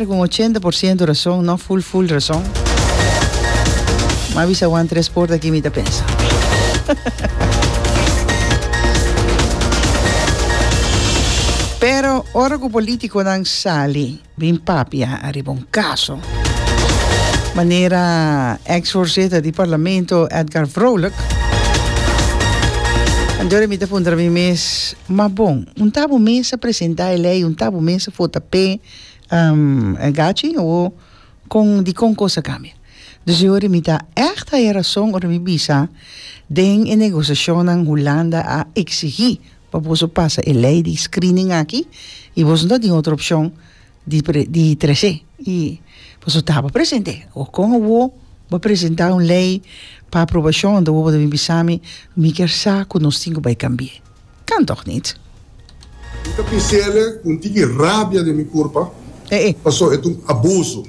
Con ochenta por ciento razon, no full full razon. M'a bisa Juan Tres Poort aki mi ta pensa. Pero ora cu politiconan sali bin papia ariba un caso, manera ex voorzitter di Parlamento Edgar Vrolijk, anto mi ta puntra mi mes, ma bon, un ta bo mester presenta e ley, un ta bo mester vota p'e, e gachi awo kon dikon kos a kambia dus e ora mi ta echt haya rason ora mi bisa den e negosiashonnan Hulanda a eksigí pa boso pasa e lei di screening aki i boso no ta tin otro opshon di di tres'é i boso tabata present'é awo kon awo bo presentá un lei pa aprobashon anto bo ta bin bisa mi mi ker sa ku nos tin ku bai kambi'é. Kan tok nit. Mi ta pins'ele cu n'tin e rabia den mi curpa, pasobra e ta un abuso.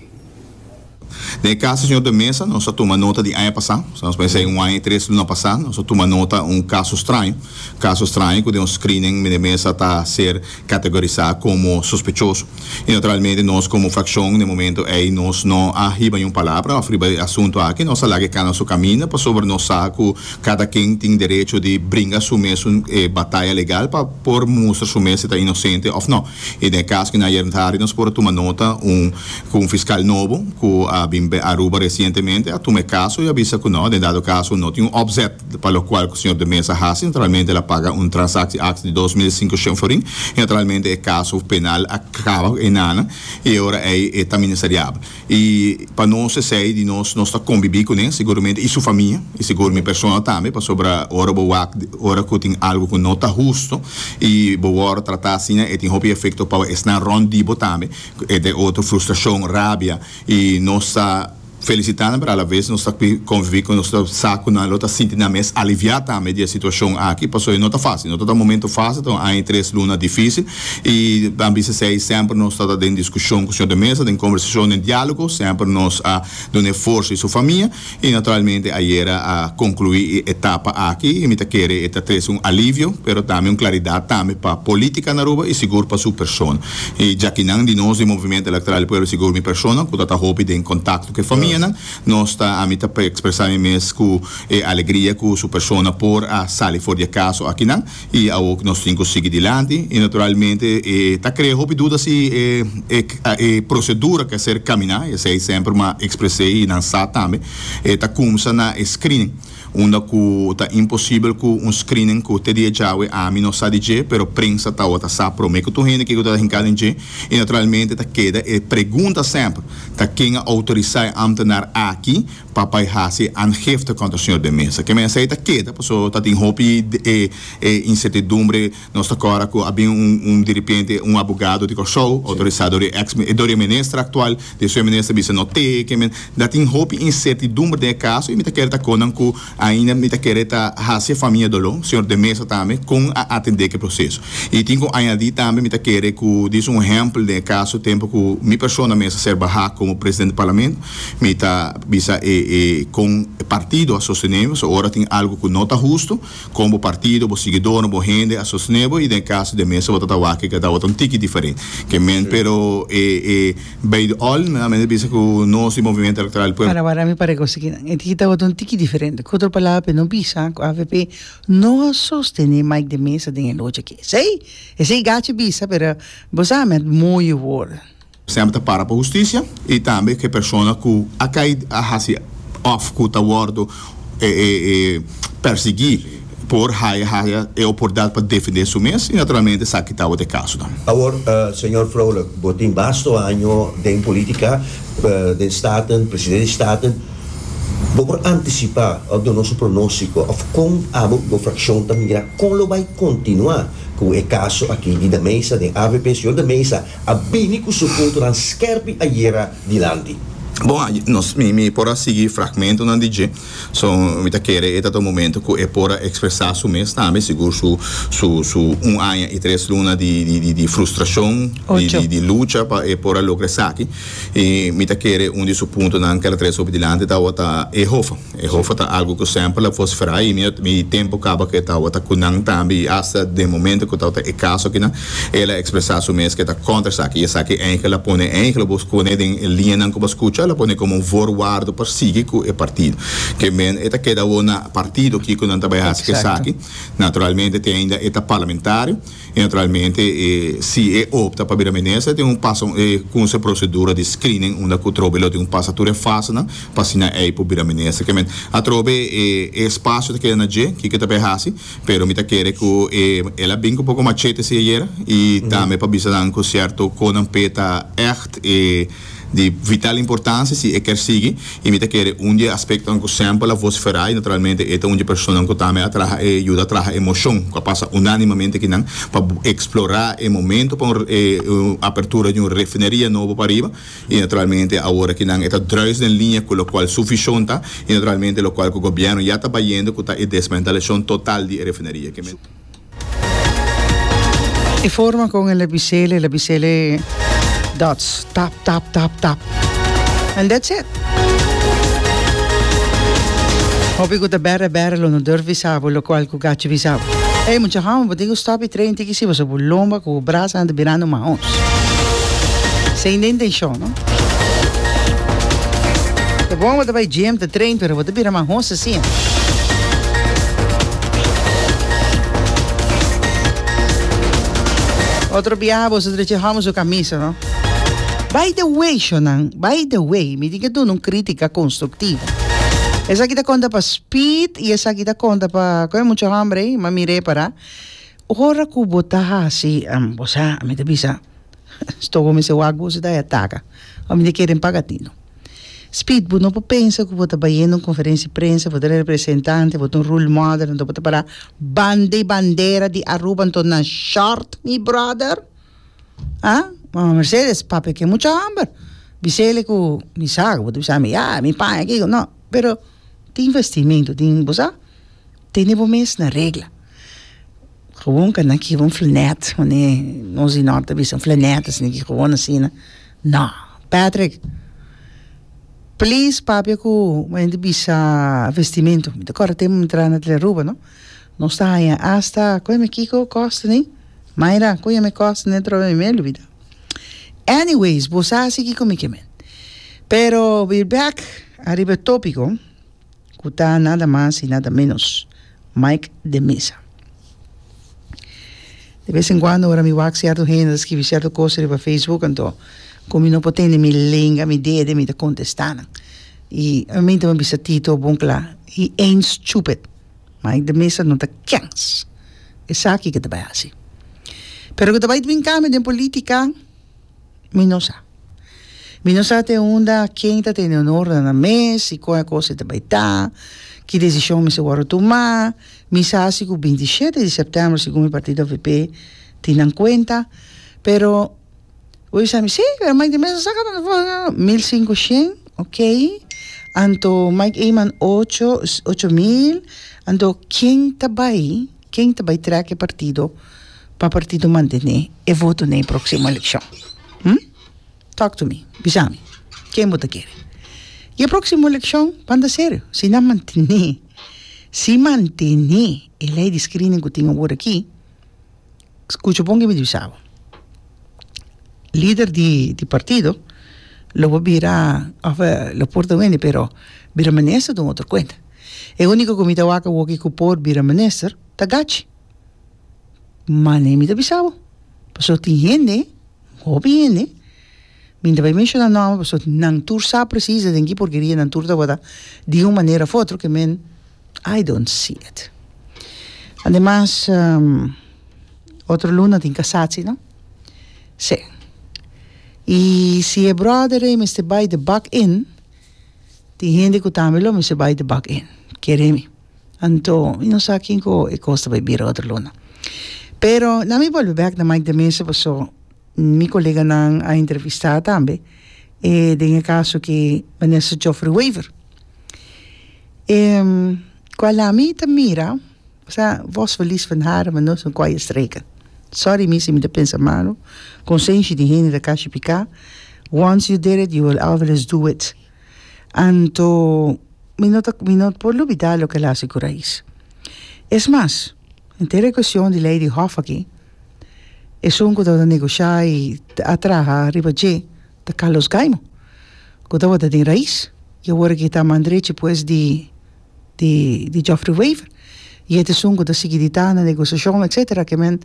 Den e caso señor de Mesa, nos a tuma nota di aña pasá, sa nos mester un aña y tres luna pasá, nos a tuma nota un caso straño, caso straño cu den un screening meneer Mesa ta ser. categorisá como sospechoso. I naturalmente nos como fraccion n'e momento ei nos no a hiba niun palabra òf riba e asunto aki, nos a laga e cana su caminda pasobra nos sa cu cada ken tin derecho di bringa su mes un bataya legal pa por mustra su mes si ta inocente òf no. I den e cas cu na ayer tardi nos por a tuma nota un cu un fiscal nobo cu a bin Aruba recientemente a tuma e caso i a bisa cu no, den dado caso no tin un opzet. pa lokual ku señor de Meza a hasi naturalmente el a paga un transaksi aks di dos mil sinku shen forin i naturalmente e kaso penal a kaba ku enanan i e ora ei e ta ministeriabel i pa nos esei di nos nos ta kombibí kuné seguramente i su famia i segur mi persona tambe pasobra ora bo wak ora ku tin algu ku no ta hustu i bo wòrdu tratá asina e tin hopi efekto pa esnan rònt di bo tambe ku e ta otro frustrashon rabia i nos ta. felisitá nan pero alabes nos ta konviví ku nos ta sa ku nan lo ta sinti nan mes aliviá tambe di e situashon aki pasobra no ta fásil no ta ta momentu fásil ta un aña i tres luna difísil i a bisa esei semper nos ta ta den diskushon ku señor de mesa den kombersashon den diálogo semper nos a duna e forsa i su famia i naturalmente ayera a konkluí e etapa aki i mi ta kere e ta trese un alivio pero tambe un klaridat tambe pa polítika na Aruba i sigur pa su persona. E djakinan di nos di Movimiento Electoral di Pueblo Sigur mi persona ku ta ta hopi den kontakto ku e famianan nos ta ami ta ekspresá mi mes ku e alegria ku su persona por a sali for di e kaso akinan i awor ku nos tin ku sigui dilanti i naturalmente e ta krea hopi duda si e prosedura ke ser kaminá esei semper mi a ekspres'é i nan sa tambe e ta kumsa na e screening. Unda ku ta imposibel ku un screening ku te dia djawe ami no sa di dje pero prensa tawata sa promé ku tur hende kiko ta hinkado den dje i naturalmente ta keda e pregunta semper ta ken a outorisá e ámtenar aki pa bai hasi e aangifte kontra señor de Meza? Ke mensei ta keda paso ta tin hopi insertidumbre Nos ta kòrda ku a bin un un di ripiente un abogado di Kòrsou outorisá dor e eks dor e minister aktual, di esun e minister bisa no te ke men da tin hopi insertidumber den e kaso i mi ta kere ta kon nan ku ainda mi ta kere ta hasi e famia doló, señor de Mesa tambe kon a atendé ke proseso. I tin ku añadí tambe mi ta kere ku dis un ehèmpel den e kaso tempu ku mi persona mester ser bahá komo presidente di Parlamento mi ta bisa e e kon e partido a sostené mi pasobra ora tin algu ku no ta hustu, Kon bo partido, bo siguidornan, bo hende a sosne bo i den e kaso den mesa bo ta tawaki ke ta awor ta un tiki diferente ke men pero e e bay de all nan men a bisa ku nos di Movimiento Electoral di Pueblo. Parawara mi pare kosi kinan e tiki ta awor ta un tiki diferente ku otro palabra pa e no bisa ku avp no a sostene Mike de Meza den e locha aki esei esei gachi bisa pero bo sa met moyo word. Semper ta para pa hustisia y tambe cu e persona cu a cay a haci of cu ta wordo persegui por haya haya e oportunidad pa defende su mes y naturalmente sa kita bo ta e casonan. Awor, Señor Vrolijk, bo tin basto año den politica, den Staten, Presidente di Staten. Bo por anticipa of duna nos un pronostico of con abo y bo fraccion ta mira con lo bay continua cu e caso aki di de Meza den avp? Señor de Meza, A bini cu su fotonan skerpi ayera dilanti. Bon, a nos mi mi por a sigui fragmentonan di dje, so mi ta kere e ta ta un momento cu e por a expresa su mes tambe, sigur su su su un aña y tres luna di di di di frustracion, di di di lucha pa e por a logra esaki y mi ta kere un di su puntonan kel a trece hopi dilanti tabatin ta e hof. E hofa ta algu ku semper la por spera i mi a mi tempu kaba ku e tabata ku nan tambe i asta den momento ku tabata e kaso akinan el a ekspresá su mes ku e ta kontra esaki i esaki enkele la pone enkele bo pone den e liñanan ku bo a skucha la pone komo un vorwardo pa sigui ku e partido ke men e ta keda awor na partido kiko nan ta bai hasi esaki naturalmente te ainda e ta parlamentario. y naturalmente e si e opta pa bira minister tin un pasa e kunsa e procedura di screening unda cu trobe lo tin cu pasa tur e fasenan pa asina ey por bira minister ke men atrobe e e espacio ta keda na dje kiko ta bay haci pero mi ta kere cu e el a bin cu poco machete si ayera y tambe pa bisa nan cu cierto conan pe ta echt e Di vital importancia si e kier sigui y mi ta kere un di e aspectonan cu semper a vocifera y naturalmente e ta un di e personanan cu tambe a traha e yuda traha e mocion cu a pasa unanimamente aki nan pa explora e momento pa un apertura di un refineria nobo pariba y naturalmente awor aki nan e ta druis den linea cu locual su vision ta y naturalmente locual cu gobierno ya ta bayendo cu ta e desmantelacion total di e refineria. E forma con el a bisele, el a bisele dots, tap, tap, tap, tap. And that's it. Hopi cu ta bere, bere lo no durf bisa bo, lo cual cu gachi bisa bo. Ey, mucha home, bo tin cu stop y train tiki si, pasobra bo lomba cu bo brasa anda birando mahons. Sende intencion, no? Ta bon bo ta bay gym, ta train, pero bo ta bira mahons. Otro biaha boso ta dici homo su camisa no. By the way shonan, by the way mi tin ke duna un critica constructiva. Esaki ta conta pa Speed y esaki ta conta pa cu e mucha hombre ey ma mi repara ora cu bo ta hasi bo sa mi ta bisa. Stogo mester wak bu su ta e ataka. Ora mi ta kere un paga tino. Speed, bo no por pensa cu bo ta bayendo un conferentie prensa, bo ta un representante, bo ta un rule model, anto bo ta para banda y bandera di Aruba anto na short mi brother. Haa? Mama Mercedes, papia ken mucha homber. Bisele cu mi sa cu bo ta bisa mi, yaa, mi paña aki, no. Pero tin vestimento, tin, bo sa. Tene bo mes na regla. Gewoon ka nan kiba un flanet, one nos di nort ta bisa un flanet asina ki gewoon asina. No, Patrick, please papia ku bo hende bisa vestimentu. Mi ta kòrda tempu mi traha na Tele Aruba, no? Nos ta haña asta, ku yami kiko? Kòstene? Mayra, ku yami kòstene atrobe mi me lubida. Anyways, bo sa si kiko mi ke men. Pero, we're back ariba e topiko. ku ta nada mas i nada menos Mike de Meza. De bes en kuando ora mi wak sierto hende ta skibi sierto kos riba Facebook anto ku mi no por tende mi lenga, mi dede mi ta kontesta nan. I obviamente mi a bisa Tito bon kla, he ain't stupid, Mike de Meza no ta kèns. Esaki ke ta bai hasi. Pero ku ta bai binka mi den politika. Mi no sa. Mi no sa te unda ken ta tene onornan na mes i kon e kos e ta bai ta, ki desishon mester wòrdu tumá. Mi sa si ku binti i shete di sèptèmber segun mi partido avp tin nan kuenta, pero bo bisa mi, sí, pero Mike de Meza a saka ta na mil sinku shen, okay, anto Mike Eman ocho, ocho mil, anto ken ta bai? Ken ta bai trèk e partido pa partido mantené e voto na e próksimo elekshon? Hm? Talk to me. Bisa mi. Ken bo ta kere? I e próksimo elekshon, banda serio, si nan mantené, si mantené e lei di screening ku tin awor akí, skucha bon ke mi ta bisa bo, lider di partido lo por bira òf lo por ta wende pero bira minister ta un otro kuenta. E único cu mi ta wak awoki cu por bira minister ta Gachi. Mane mi ta bisa bo, pasobra tin hende, un hopi hende, mi ta bay menciona nomber pasobra nan tur sa precies den ki porkeria nan tur ta wota di un manera of otro ke men I don't see it. Ademas otro luna tin casatie no? Sí. Y si e brother ei mester bay de bak in. Tin hende ku tambe lo mester bai di bak en kere mi. Anto mi no sa kin ku e kos ta bai bira otro luna. Pero na mi bolbe bek na Mike de Mesa paso mi koleganan a entrevista tambe e den e kaso ki Minister Geoffrey Wever. Ku a la mi ta mira Sa vos felis van haren ma nos no koy e streka sorry mi si mi ta pensa malo konsenshi di hende ta kashi pika once you did it you will always do it anto mi no ta mi no por lubida loke el hasi ku rais es mas enter e kueshion di lei di hof aki esun ku tabata negoshá i a traha riba dje ta Carlos Gaimo ku tabata den rais i awor aki ta man drechi pues di di Geoffrey Wever y et esun cu ta sigui di ta na negociacion etcetera que men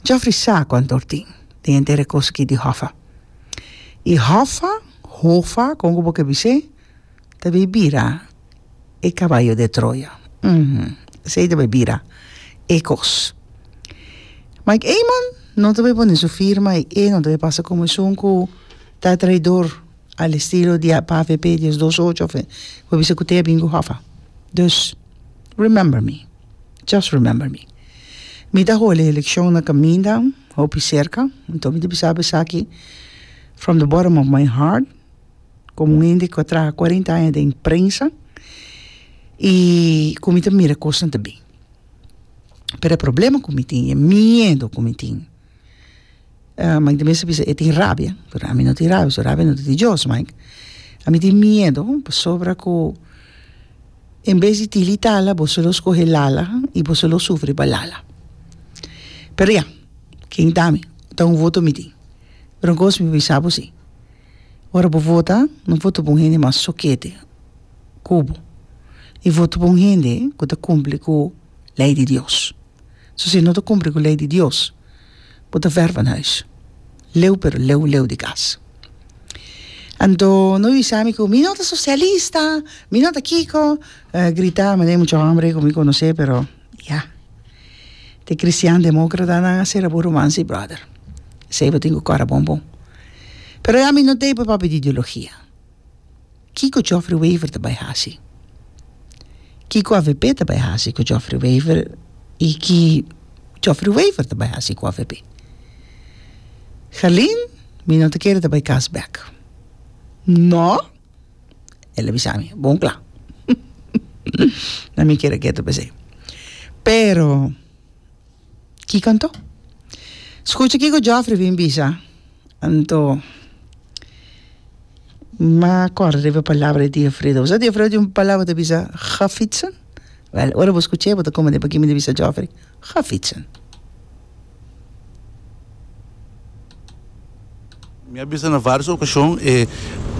Geoffrey sa cuantor tin den entera cos aki di Hoffa y Hoffa Hoffa como cu bo ke bis'e ta bay bira e caballo de Troya uhmm esey ta bay bira e cos Mike Eman no ta bay pone su firma y e no ta bay pasa como esun cu ta traidor Al estilo di avp dies dos ocho of bo bisa cu tabia bin cu hofa. Dus, remember me, just remember me. Mi ta holi eleccion na caminda, hopi cerca, anto mi ta bisa esaki from the bottom of my heart, como un hende cu a traha cuarenta aña den prensa y cu mi ta mira cosnan ta bin. Pero e problema cu mi tin, e miedo cu mi tin. Mike ta mester bisa e tin rabia pero ami no tin rabia pasobra rabia no ta di dios Mike ami tin miedo pasobra ku en bes di tili tala boso lo skohe lala i boso lo sufri pa lala pero ya ken ta mi ta un voto mi tin pero un kos mi bisa bo si ora bo vota no vota pa un hende mas sokete ku bo i vota pa un hende ku ta kumpli ku lei di Dios. So si no ta kumpli ku lei di Dios, bo ta ver van huis. Leu pero leu leu di kas. Anto no bisa mi ku mi no ta sosialista, mi no ta kiko, grita manera e mucha hombre ku mi konosé pero ya. Te kristian demokratanan a sera bo ruman si brother. Esei bo tin ku kòrda bon bon. Pero ya mi no dei papia di ideologia. Kiko Geoffrey Wever ta bai hasi? Kiko avp ta bai hasi ku Geoffrey Wever i ki Geoffrey Wever ta bai hasi ku avp? Gerlin, Mi no ta kere ta bai kas bèk. Nò? El a bisa mi, Bon kla. Na mi kere ke ta p'esei. Pero. Kiko anto? Skucha kiko Jofre bin bisa, Anto, m'a kòrda riba e palabra di tia Freda. Bo sa tia Freda tin un palabra ta bisa, Gafitsen? Wèl, ora bo skucha e, bo ta komo di pa ki mi ta bisa Jofre, Gafitsen. Mi a bisa na vários okashon e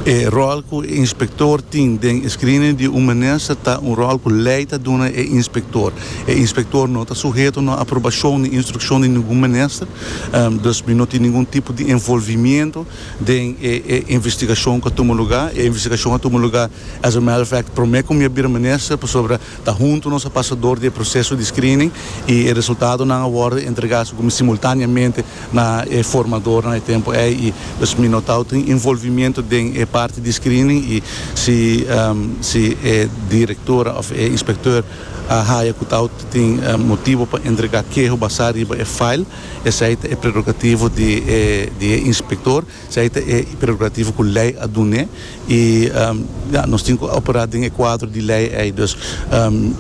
e ròl ku e inspektor tin den e screening di un minister ta un ròl ku lei ta duna e inspektor. E inspektor no ta suheto na aprobashon ni instrukshon di ningun minister, dus mi no tin ningun tipo di envolvimiento den e e investigashon ku a tuma lugá. E investigashon a tuma lugá as a matter of fact promé ku mi a bira minister pasobra ta huntu nos a pasa dor di e proseso di screening i e resultadonan a wòrdu entregá segun mi simultáneamente na e formadornan e tempu ei i dus mi no tau tin involvimiento den e parti di screening i si si e directora of e inspecteur a haya cu tau tin motibo pa entrega keho basá riba e file esei ta e prerogativo di e inspector. Sei ta e prerogativo ku lei a dun'é i ya nos tin ku operá den e kuadro di lei ei. Dus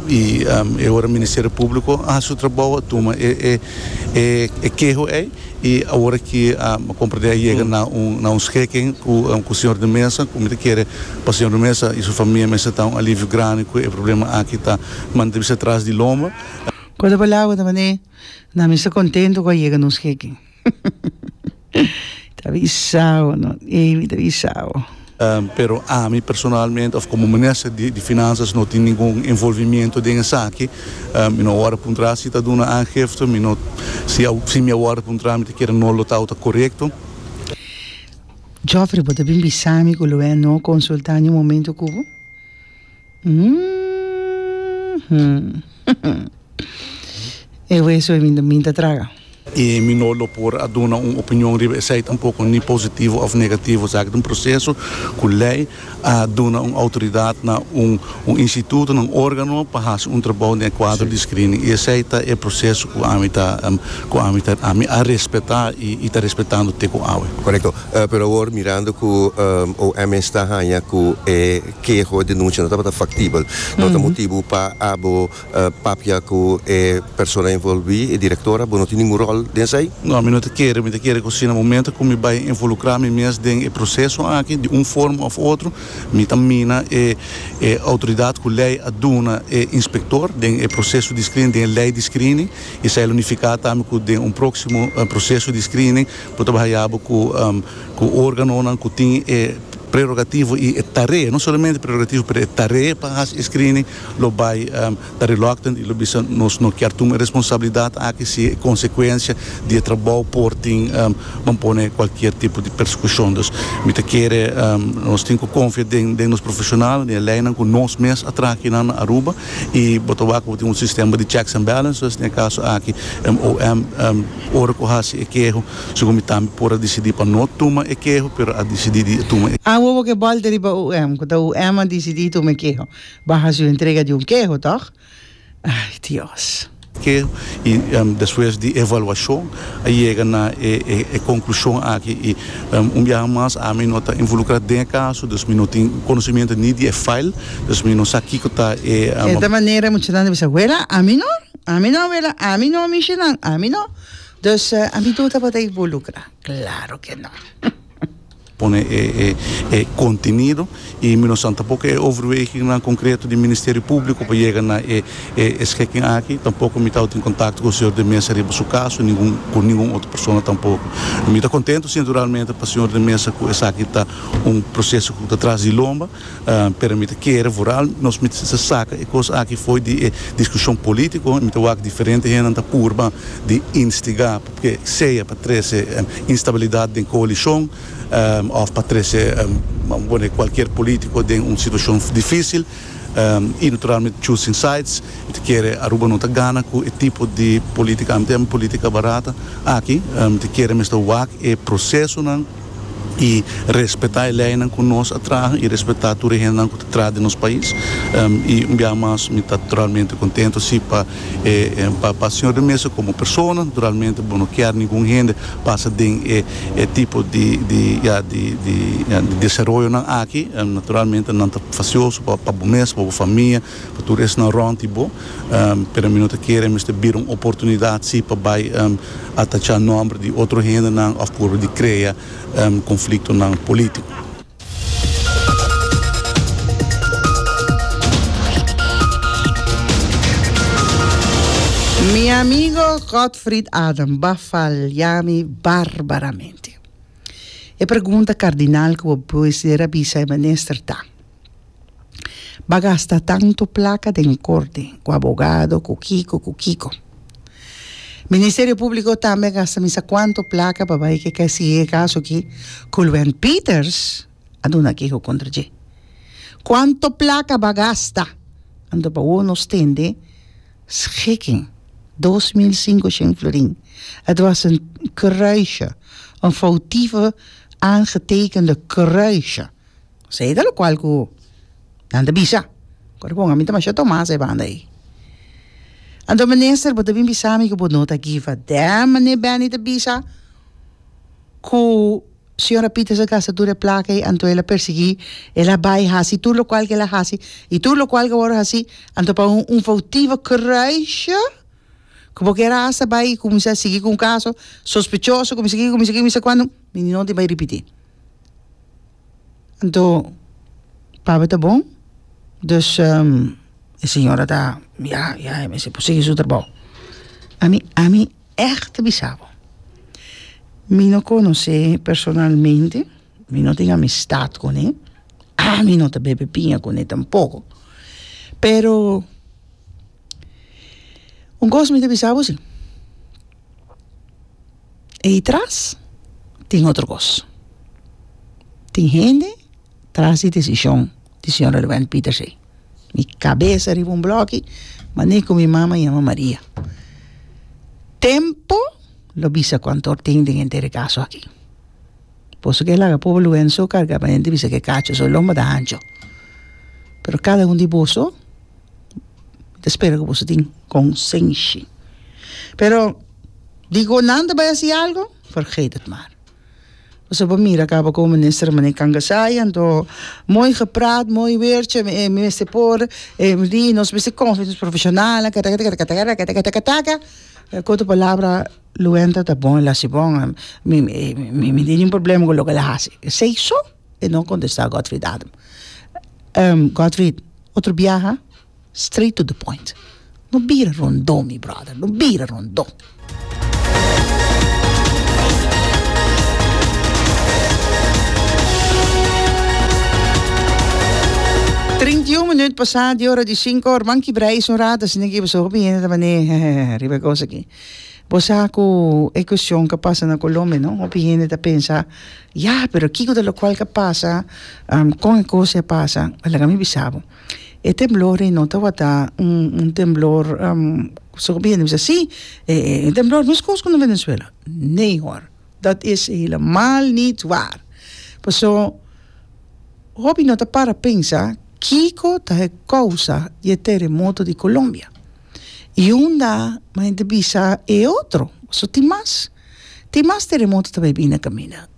i e ora Ministerio Públiko a hasi su trabou, a tuma e keho ei i awor aki mi komprendé a yega na un skeken ku señor de Meza ku mi ta kere pa señor de Meza i su famia mester ta un alivio grandi ku e problema aki ta manda bisa tras di lomba. Ku otra palabra ta mane nan mester kontentu ku a yega na un skeken. Ta bisao no e mi ta bisao. Pero ami personalmente of como minister di di finanzas no tin ningun envolvimiento den esaki, mi no a wordo puntra si ta duna aangifte, mi no si a si mi a wordo puntra mi ta kere no lo ta ota corecto. Joffrey bo ta bin bisa mi cu lo e no consulta ni un momento cu bo? E hueso e min ta traga. I mi no lo por a duna un opinion riba esei tampoko, ni positivo òf negativo. Esaki ta un proseso ku lei a duna un outoridat na un un instituto, na un órgano pa hasi un trabou den e kuadro di screening. I esei ta e proseso ku ami ta ku ami ta ami a respetá i ta respetando te ku awe. Korekto. Pero awor mirando ku OMS ta haña ku e keho, e denuncia no tabata factibel. No ta motibu pa abo papia cu e persona envolvi, e director, abo no tin ningun rol den esai? No, mi no ta kere, mi ta kere cu si na momento cu mi bay involucra mi mes den e proceso aki di un forma of otro, mi ta mina e e autoridad cu ley a duna e inspector den e proceso di screening, den e ley di screening, y esai lo nifica tambe cu den un proximo proceso di screening bo ta bay haya abo cu. Cu organonan cu tin e prerogativo y e tarea, no solamente prerogativo, pero e tarea pa haci e screening, lo bay ta reluctant y lo bisa, Nos no kier tuma e responsabilidad aki si e consecuencia di e trabao por tin ban pone cualkier tipo di persecucion. Dus, mi ta kere nos tin cu confia den den nos profesional, den e leynan cu nos mes a traha akinan na Aruba y bo ta wak cu bo tin un sistema di checks and balances. Den e caso aki, MOM ora cu haci e keho, Segun mi tambe por a disidí pa no tuma e keho, pero a disidí di tuma e. Awo bo ke bòl ta riba UM, ku ta UM a disidí tuma e keho. Baha su entrega di un keho, tòg? Ay, Dios! Keho, i despues di evaluashon a yega na e konklushon aki, i un biaha mas ami no ta involukrá den e kaso, dus mi no tin konosementu ni di e fail, dus mi no sa kiko ta e. Eta manera muchanan ta bisa, Wela, ami no! Ami no, Wela, ami no! Mishinan, ami no! Dus ami tur tabata ivolucra? Claro que no. Pone e e e contenido y mi no san tampoco e overwegingnan concreto di Ministerio Publico pa yega na e e e schikking aki. Tampoco mi tawat in contacto cu Señor de Meza riba su caso ni ningun cu ningun otro persona tampoco. Mi ta contento sinceralmente pa Señor de Meza cu esaki ta un proceso cu ta tras di lomba. Pero mi ta kere vooral nos mi ta saka e kos aki fo'i di e diskushon polítiko. Mi ta wak diferente hendenan ta purba di instigá p'e sea pa trese instabilidat den koalishon òf pa trese pone kualkier polítiko den un situashon difísil i naturalmente choosing sides. Mi ta kere Aruba no ta gana ku e tipo di polítika, ami ta yama polítika barata, aki. Mi ta kere mester wak e prosesonan. y respeta e leynan cu nos a traha y respeta tur e hendenan cu ta tras den nos pais y un bia mas mi ta realmente contento si pa pa señor de mesa como persona naturalmente bo no kier ningun hende pasa den e tipo di di ya di di desaroyonan aki naturalmente nan ta facioso pa bo mes pa bo famia. Pa tur esnan rond di bo. Pero mi no ta kere mester bira un oportunidad si pa bai atacha nomber di otro hendenan of proba di crea conflictonan politico. Mi amigo Godfried Adam ba falia mi barbaramente. E pregunta cardinal cu bo mester a bisa e minister ta. ba gasta tantu plaka den korte ku abogado ku kiko ku kiko ministerio públiko tambe a gasta misa kuantu plaka pa bai ke sigi e kaso aki ku Luen Peters a duna keho kontra dje kuantu plaka ba gasta anto pa wou nos tende schiking dos mil singoshen florin het was een kruisje een foutieve aangetekende kruisje. Esei ta lokual ku nan ta bisa. Ku ora bon ami ta masha Tomas e banda ei. Anto minister bo ta bin bisa mi ku bo no ta gifa dèm manera Benny ta bisa ku señora Peters a gasta tur e plaka ei anto el a persiguí el a bai hasi tur lokual ku el a hasi i tur lokual ku a wòrdu hasi anto pa un foutivo kereisha ku bo kier hasta bai i kuminsá sigui ku un kaso sospechoso kuminsá ki kuminsá ki kuminsá ki kuandu mi no tin bai ripití. Anto papia ta bon dus e señora ta ya ya e mester por sigui su trabou ami ami echt ta bisa bo mi no conoce personalmente mi no tin amistad cune ami no ta bebe biña cune tampoco pero un cos mi ta bisa bo si Ei tras tin otro kos. Tin hende tras di desishon di señor Relevain Pieters ei. Mi kabesa riba un bloki, mane ku mi mama yama Maria. Tempo lo bisa kuantu hor tin den henter e kaso aki. Por eso ke laga pobe Lourenço karga pa hende bisa ke kacho su lomba ta ancho. Pero kada un di boso ta spera ku boso tin konsenshi. Pero Di ku nan ta bai hasi algu, vergeet het maar. Pasobra bo mira kaba ku Minister Rene Camkasai anto mooi gepraat, mooi weer che mi mester por di, nos mester confia nos profesionalnan kataketakataka, e koto palabra Luenta ta bon, el hasi bon, mi mi tin un problema ku loke el a hasi. Esei so e no kontesta Godfrid Adam. Godfrid, otro biaha. Straight to the point. No bira rondó mi brother, no bira rondó. Trinta i un minuut pasá di ora di sinku, Ruman Kibrei i su rata a sintié ku i pasobra hopi hende ta manee heheheh riba e kos aki. Bo sa ku e kushon ka pasa na Colombia no, hopi hende ta pensa ya pero kiko ta lokual ka pasa kon e kos ya pasa, a laga mi bisa bo. E temblor ei no tabata un un temblor ku su hende bisa si e e temblor miskos ku na Venezuela nee hor dat is helemaal niet waar paso hopi no ta para pensa kiko ta e kousa di e teremoto di Colombia i unda hende bisa e otro paso tin mas tin mas teremoto ta bai bini na kaminda.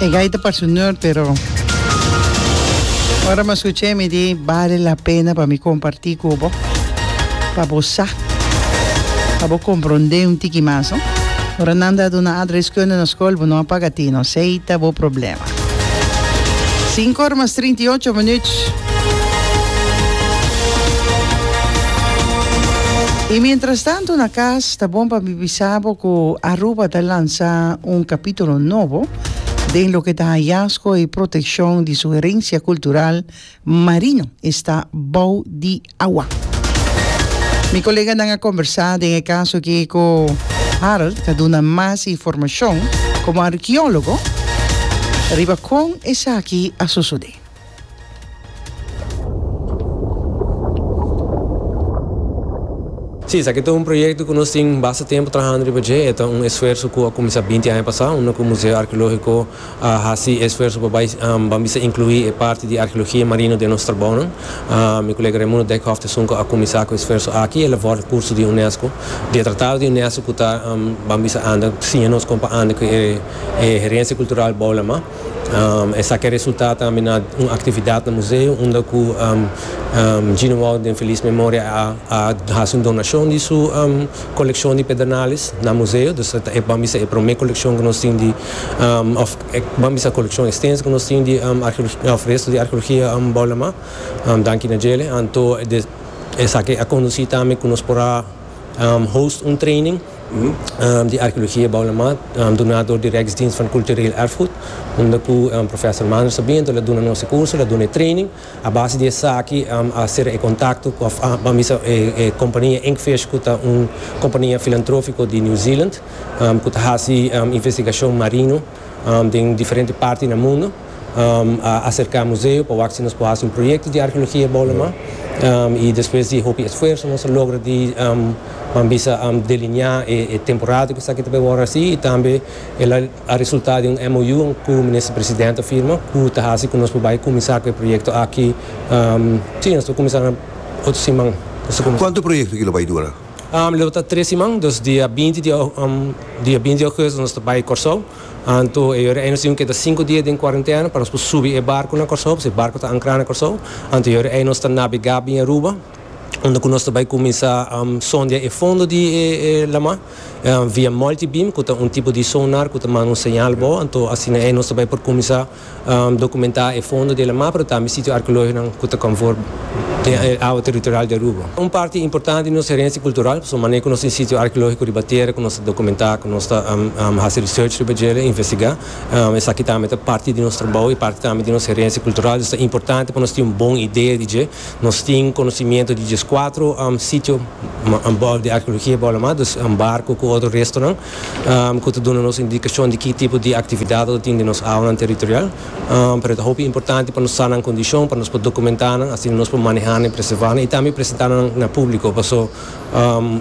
E gai ta parse un nerd pero ora mi a scucha mi di bale la pena pa mi comparti cu bo pa bo sa pa bo compronde un tiki mas no ora nan ta duna adreskunde na scol bo no a paga tino sey ta bo problem. Sinku ora mas trinta i ocho minuut. I mientras tanto na kas ta bon pa mi bisa bo ku Aruba ta lansa un kapitulo nobo den loke ta hayazgo i protekshon di su herensia kultural marino esta bou di awa. Mi koleganan a kombersá den e kaso aki ku Harold ta duna mas informashon komo arkeólogo riba kon esaki a sosodé. Sí, esaki ta un proyekto ku nos tin basta tempu trahando riba dje. E ta un esfuerso ku a kuminsá binti aña pasá, unda ku Museo Arkeológiko a hasi esfuerso pa bai ban bisa inclui e parti di arheologia marino den nos trabounan. Mi colega Raimundo Dijkhoff ta esun cu a cuminsa cu e esfuerso aki, el a vorda curso di UNESCO, di e tratado di UNESCO cu ta ban bisa anda siña nos con pa anda cu e herencia cultural bou lama. Esaki a resulta tambe na un actividad na museo unda cu Gino Wout den feliz memoria a hasi un donacion di su Kolekshon di pedernales na museo, dus ta e ban bisa e promé kolekshon ku nos tin di òf e ban bisa kolekshon ekstenso ku nos tin di arkeologia òf resto di arkeologia bou Lamá. Danki na djele anto de esaki a kondusí tambe ku nos por a host un training di arkeologia bou Lamá duná dor di Rijksdienst van Cultureel Erfgoed unda ku Professor Maanders ta bini anto el a duna nos e kurso el a duna e training. A base di esaki a sera e kontakto of a bisa e kompania Inkfish ku ta un kompania filantrofiko di New Zealand ku ta hasi investigashon marino den diferente parti na mundu. A aserká museo pa wak si nos por hasi un proyekto di arkeologia Bolama i despues di hopi esfuerso nos a logra di bisa delineá e temporada ku esaki ta por wòrdu hasi i tambe el a A resulta di un MOU ku Minister Presidente a firma ku ta hasi ku nos por bai kuminsá ku e proyekto aki. Sí, nos ta kuminsá na otro siman. Kuantu proyekto ki lo bai dura? Lo ta tres siman, dus dia binti di dia binti di Ougèsto nos ta bai Kòrsou. Anto e yòrda ei nos tin ku keda sinku dia den kuarentena pa nos por subi e barku na Kòrsou, pasobra e barku ta ankrá na Kòrsou. Anto e yòrda ei nos ta nabegá biña Aruba, unda ku nos ta bai kuminsá Sòndia e fondo di e lamá. via multibeam cu ta un tipo di sonar cu ta manda un señal bo anto asina e nos ta bay por cuminsa documenta e fondo di laman pero tambe sitio arqueologiconan cu ta conform den e awa territorial di Aruba. Un parti importante di nos herencia cultural pasobra manera cu nos tin sitio arqueologico riba tierra cu nos ta documenta cu nos ta haci research riba djela investiga esaki tambe ta parti di nos trabou y parti tambe di nos herencia cultural dus ta importante pa nos tin un bon idea di dje. Nos tin conoci-miento di djes cuatro sitio di arqueologia bou la mas, dus barco cu otro restonan cu ta duna nos indicacion di ki tipo di actividad lo ta tin den nos awanan territorial. Pero ta hopi importante pa nos sa nan condicion, pa nos por documenta nan, asina nos por maneha nan y preserva nan y tambe presenta nan na publico, paso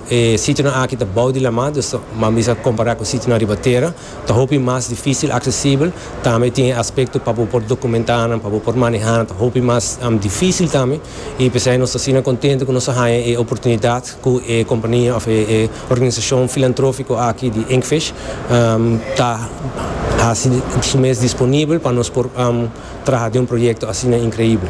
e sitionan aki ta bou di la mar, dus ta mas bisa compara cu sitionan riba tera. Ta hopi mas difísil aksesibel, tambe tin e aspekto pa bo por dokumentá nan, pa bo por manehá nan ta hopi mas difísil tambe, i p'esei nos ta asina kontentu ku nos a haña e oportunidat ku e kompania òf e organisashon filantrófiko aki di Inkfish ta hasi su mes disponibel pa nos por traha den un proyekto asina inkreibel.